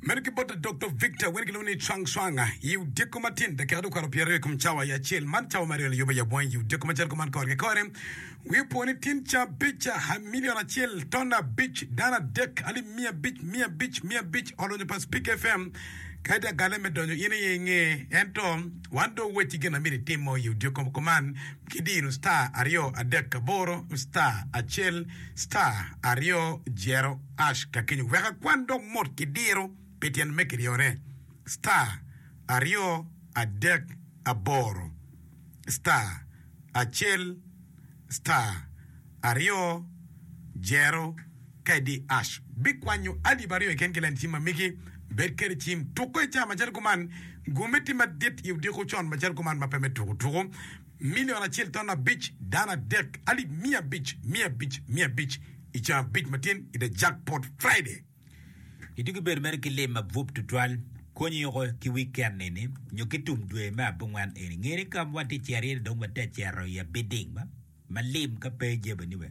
Medo ki bot Doctor Victor wene kilwongo ni Chuang Chuang, i odiko matin dakika dukwaro pyeraryo i kom cawa i acel man cawa maryo layobo i abwany i odiko macalo kuman kore ki kore wi opwo ni tin ca abic milion acel ton abic dano adek alip miya abic miya abic miya abic olonyo pa Speak FM kadi agale me donyo in iye inge ento wan do weci gin amiri timo i odiko kuman ki diro star aryo adek aboro star acel star aryo jero Ash ka kenyo wek akwan dok mot ki diro pi tyen me kiryone, star, aryo, adek, aboro, star, acel, star, aryo, jero, ka idi ash bikwanyo alip aryo iken ki len cim ma migi bed kede cim tuko ica macalo kuman, gume tim madit i odiko con macalo kuman ma pe me tuko tuko. milion acel ton abic dano adek alip miya abic miya abic miya abic i caa abic matin i The Jackpot Friday. I tugo bedo mere ki lim mabup tutwal, konyi yoko ki wiken eni nyo ki tum dwe me abongwen eni. Ngeni ka watye ceriere dong watye cero i a bidding ma lim ka pe jebeni we.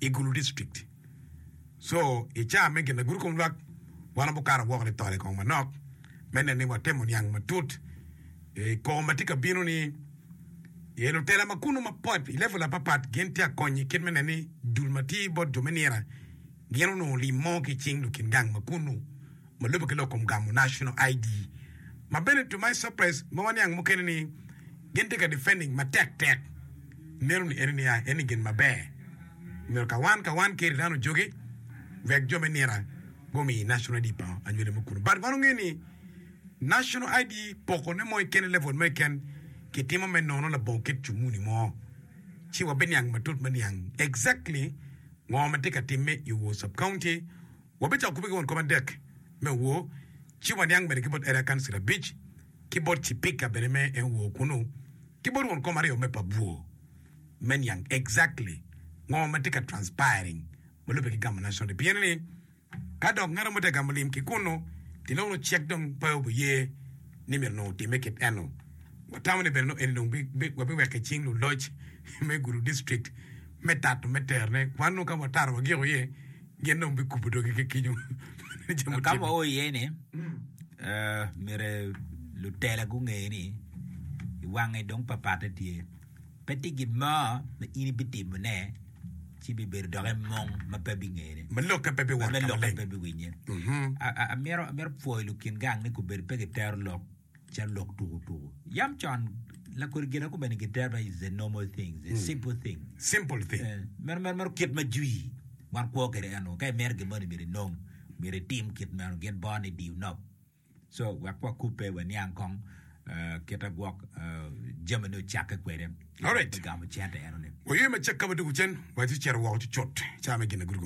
i Gulu District. Co i caa me ginagudo kom lwak, wan abukato woko nitol i kong manok me neno ni watemo niang matut i koko ma tye ka bino ni ye lutela ma kunu mapot i level apapat gin tye akonyi kit me neno ni dul ma tye bot jo me nira gin onongo lim mo ki cing lukin gang ma kunu ma lubbe ki lok kom gamo National ID, ma bene to my surprise ma waniang mukene ni gin tye ka defending matek tek meno ni eni niya eni gin maber omyero ka wan ka wan Keri dano ojoge wek jo me nira gumi National ID pa anywali mo kunu but wan onge ni National ID poko ne mo keken level mo keken ki timo me nono labongo kit comuni mo ci wabiniang matut maniang exactly ngo ma tye ka timme i Wor Sub County Wabicako kube ki won kop adek me owo, ci waniang mede ki bot Area Council abic, ki bot Cipika bene me en owo kunu, ki bot won kom aryo me pa bwo, me niang exactly ngo ma tye ka transpiring ma lubbe ki gamo National Day. Pien ni ka dok ngat mo tye ka gamo lim ki kunu, ti dong nongo cik dong pe obiye ni myero nongo otimme kit eno. Watamo ni bene nongo eni dong wabiweko i cing luloc me gudo district me tato me terone kwan nongo ka wataro wagiko iye. Gin dong bikubo dogi ki kico. Ka ma oo iye ni myero lutela gunge ni i wange dong papatte tye. Pe tye gin mo ma in ibitimone ci bibedo doki mung ma pe bingene. Ma lokke pe biwot ka maleng. Amyero pwoyo lukin gang ni kubed pe gitero lok. Calo lok tuku tuku. Yam con, lakodi gin aku bene giterba is a normal thing, is a simple thing. Simple thing. Eh, meno meno meno kit ma jwi wan kwo kede eno. Ka imito gin moni myero inong, myero itim kit meno. Gin bor ni diu nop. So wek wakubbe waniang kong eh, kita gwok eh, jami ni ocakke kwede. Alright. Gamo cente eno ni. Waywey macek ka ma doko cen, wa ci cito woko cucut. Ca me gin na gudo gum